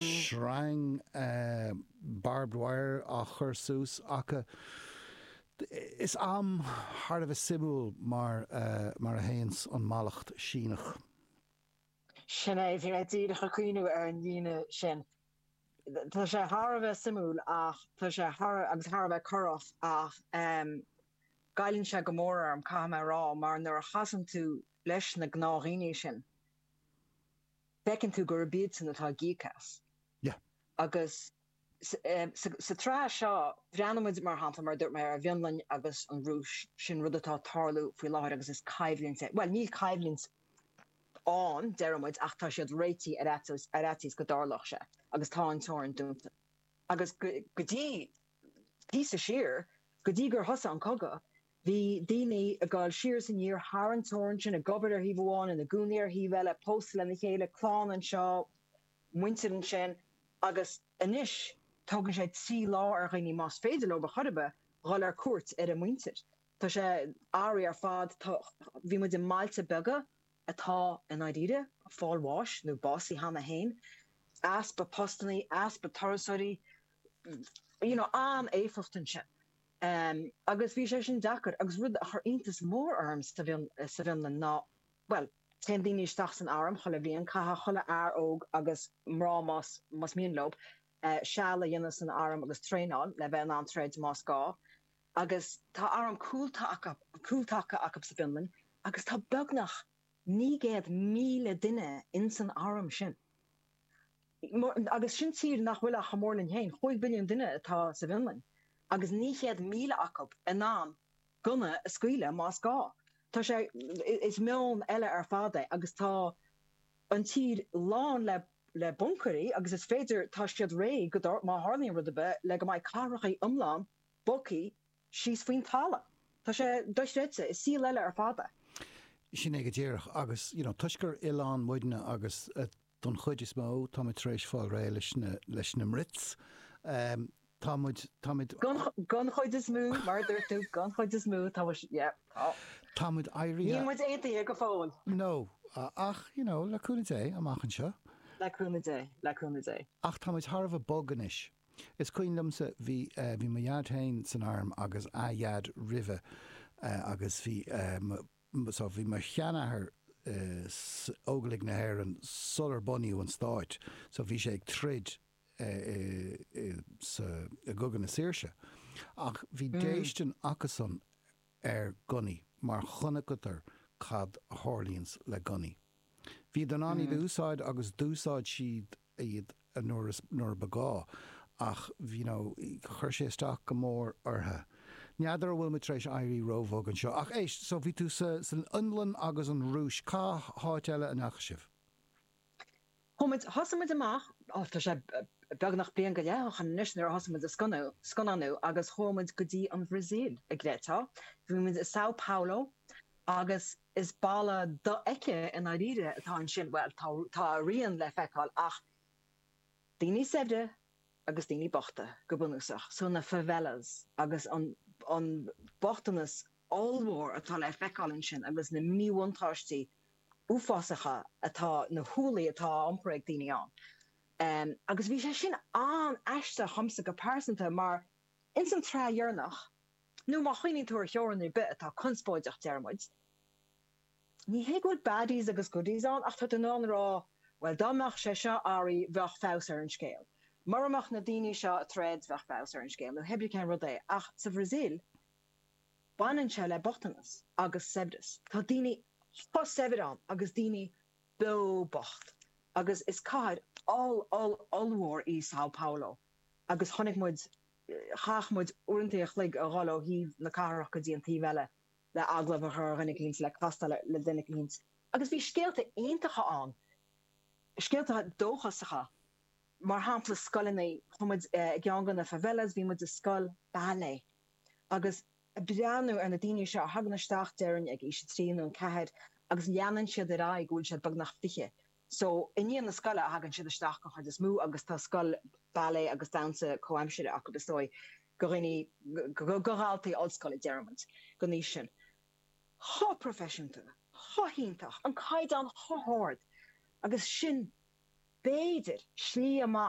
sreang barbed wire á chur suas acu. Is am thar a bheith suimiúil mar a théann an mallacht Shíneach. Sin é, bhí mé díreach ag cuimhneamh ar an líne sin. Tá sé thar a bheith suimiúil ach tá sé thar agus thar a bheith corrach ach goilleann sé go mór orm, caithfidh mé a rá, mar nuair a chasann tú leis na gnáthdhaoine sin, Feiceann tú gurb iadsan atá ag íoc as. Yeah. Agus sa tsraith seo, breathnaímid, mar shampla, mar a dúirt mé, ar an bhFionlainn agus an Rúis. Sin rud atá ag tarlú faoi láthair agus is coimhlint é. Bhuel, níl coimhlint ann, deirimid, ach tá siad réitithe ar fhaitíos go dtarlódh sé. Agus tá an teorainn dúnta. Agus go dtí píosa siar, go dtí gur thosaigh an cogadh, Bhí daoine ag gabháil siar is aniar thar an teorainn sin, ag obair ar thaobh amháin, ina gcónaí ar thaobh eile, pósta lena chéile, clann anseo, muintir ansin, agus anois tógann sé trí lá ar dhaoine, más féidir leob ar chor ar bith, dhul ar cuairt ar a muintir. Tá sé áibhéil ar fad. Bhí muid i mbailte beaga atá i ndáiríre ag fáil bháis nó básaithe cheana féin. Easpa postannaí, easpa turasóirí, you know, an-éifeacht ansin. Em, agus bhí sé sin deacair agus rud a chur iontas mór orm sa bhFionn, sa bhFionlainn ná, bhuel, téann daoine isteach san arm chuile bhliain, caithfidh chuile fhear óg agus mná más, más mian leob, eh, seal a dhéanamh san arm agus traenáil le bheith in ann troid más gá. Agus tá arm cúltaca, cúltaca acub sa bhFionlainn agus tá beagnach naoi gcéad míle duine in san arm sin. Agus sin tír nach bhfuil ach chomh mór linn féin. Cúig mhilliún duine atá sa bhFionlainn agus 900,000 acu in ann gunna a scaoileadh más gá. Tá sé, is meon eile ar fad é agus tá an tír lán le le buncaeirí agus is féidir, tá siad réitithe go, má tharlaíonn rud ar bith, le go mbeidh cathracha iomlán bogthaí síos faoin talamh. Tá sé dochreidte. Is saol eile ar fad é. Sin é go díreach. Agus, you know, toisc gur oileán muidne agus, Don chuid is mó, tá muid tar éis fáil réidh leis na mBrits. Tá muid, tá muid. Don chuid is mó, mar a dúirt tú, don chuid is mó, tá muid, yeah, tá. Tá muid éirithe. Níl muid aontaithe go fóill. No, ach, you know, le cúnamh Dé, amach anseo. Le cúnamh Dé, le cúnamh Dé. Ach tá muid thar a bheith bog anois. Is cuimhin liomsa, bhí, bhí mo dhaid féin san arm agus a dhaid roimhe agus bhí mo, so bhí mo sheanathair san Óglaigh na hÉireann sular bunaíodh an stát so bhí sé ag troid sa i gCogadh na Saoirse ach bhí déistin acusan ar ghunnaí mar chonaiceadar cad a tharlaíonns le gunnaí. Bhíodar in ann iad a úsáid agus d'úsáid siad iad nuair ba ghá ach you know chuir sé isteach go mór orthu. N'fheadar a bhfuil muid tar éis éirí róbhog anseo. Ach éist, so bhí tú san Fhionlainn agus an Rúis. Cá háit eile a ndeachaigh sibh? Thosaigh, thosaigh muid amach, oh tá sé beagnach bliain go leith ó shoin anois, nuair a thosaigh muid ag scannánú agus chuaigh muid go dtí an Bhrasaíl, i gcéaduair. Bhí muid i Sao Paulo agus Is balla dofheicthe i ndáiríre atá ansin, bhuel, tá a rian le feiceáil ach daoine saibhre agus daoine bochta, go bunúsach. So na favelas agus an bochtanas ollmhór atá le feiceáil ansin agus na míbhuntáistí uafásacha atá, na hualaí atá á iompar ag daoine ann. Agus bhí sé sin an-aisteach dhomsa go pearsanta mar ins an tsraith dheireanach, Nó má chuimhníonn tú ar theorainn ar bith atá conspóideach, déarfadh muid, Ní hé go bhfuil baddies agus goodies ann, ach tá tú in ann a rá, Bhuel, dá mbeadh sé seo ina rí, bheadh feabhas ar an scéal. Mura mbeadh na daoine seo i dtreis, bheadh feabhas ar an scéal, nó hé bith cén rud é. Ach sa Bhrasaíl, baineann sé le bochtanas agus saibhreas. Tá daoine chomh saibhir ann agus daoine beo bocht. Agus is cathair oll, oll, ollmhór í Sao Paulo, agus chonaic muid Chaith muid uaireanta a chloig a dhul ó thaobh na cathrach go dtí an taobh eile le agallamh a chur ar dhuine eicínt, le castáil le duine eicínt. Agus bhí scéalta iontacha ann, scéalta dóchasacha. Mar shampla, scoileanna. Chuaigh muid i gceann de na favelas, bhí muid i scoil ballet agus ag breathnú ar na daoine seo a thagann isteach, déarfainn, ag aois a trí nó a ceathair agus leanann siad ar aghaidh go bhfuil siad beagnach fiche. So, i ndiaidh na scoile a thagann siad isteach den chuid is mó agus tá scoil ballet agus damhsa comhaimsire acu, is dóigh, go dhaoine, go dhaltaí ollscoile, déarfadh muid, den aois sin. Chomh proifisiúnta, chomh hiontach, an caighdeán chomh hard agus sin b'fhéidir slí amach.